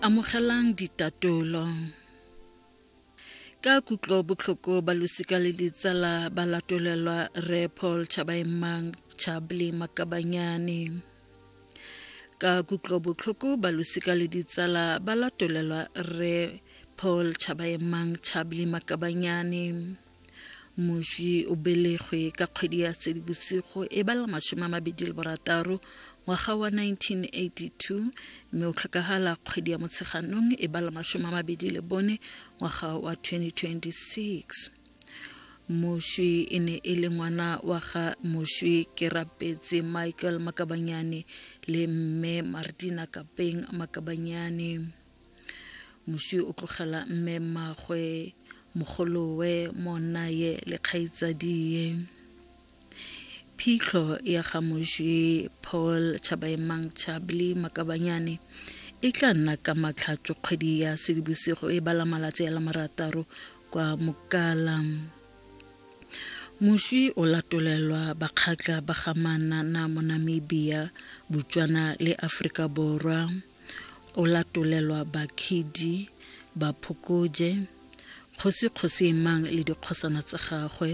Amogelang ditatolo. Ka kutlo botlhoko ba losika le ditsala ba latolelwa Re Paul Chabaemang Chabli Makabanyane. Ka kutlo botlhoko ba losika le ditsala ba latolelwa Re Paul Chabaemang Chabli Makabanyane. moswi o belegwe ka kgwedi ya sedibosigo e bala masome a mabedi le borataro ngwaga wa 1982 mme o tlhokagala kgwedi ya motsheganong e bala masome a mabedi le bone ngwaga wa 2026 moswi e ne e le ngwana wa ga moswi ke rapetse michael makabanyane le mme martina kapeng makabanyane moswi o tlogela mme mmagwe mogolowe monnaye le kgaitsadie phitlho ya ga moswi paul chabaemang chabli makabanyane e tla nna ka matlhatso kgwedi ya sedibosigo e bala malatsi a la marataro kwa mokala moswi o latolelwa bakgatla ba gamana na mo namibia botswana le aforika borwa O latolelwa Bakhidi, Baphokoje, kgosi kgosi e mang le dikgosana tsa gagwe,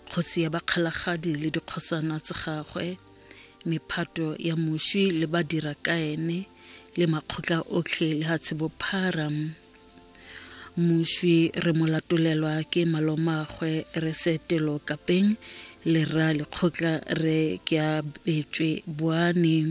kgosi ya Bakgalagadi le dikgosana tsa gagwe, mephato ya moswi le badira ka ene, le makgotla otlhe le ha tshibophara. Moswi re mo latolelwa ke malomagwe re setelo kapeng le rra lekgotla re ke a betswe boaneng.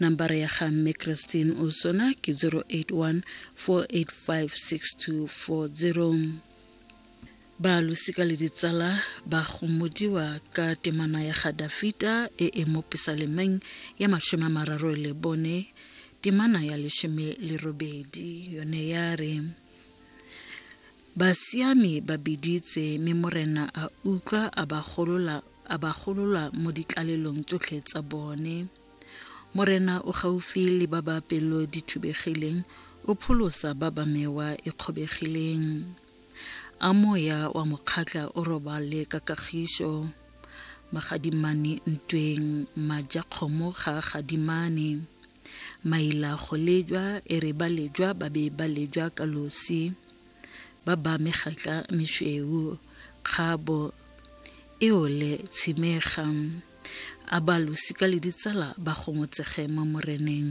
nambara ya ga mme christine osona ke 081 4856240 ba losika le ditsala ba gomodiwa ka temana ya ga dafita e e mo pesalemeng ya mashome a mararo le bone temana ya leshome le robedi yone ya re basiami ba biditse mme morena a utlwa a ba golola a ba golola mo ditlalelong tsotlhe tsa bone. Morena o gaufi le ba ba pelo di thubegileng, o pholosa ba ba mewa e kgobegileng. A moya wa mokgatla o robale ka kagišo. Magadimane ntweng, maja kgomo ga a gadimane. Maila go lejwa, e re ba lejwa ba be ba lejwa ka losi. ba ba amega ka mešweu, kgabo, eole, tshimega, a ba losika le ditsala ba gomotsege mo Moreneng.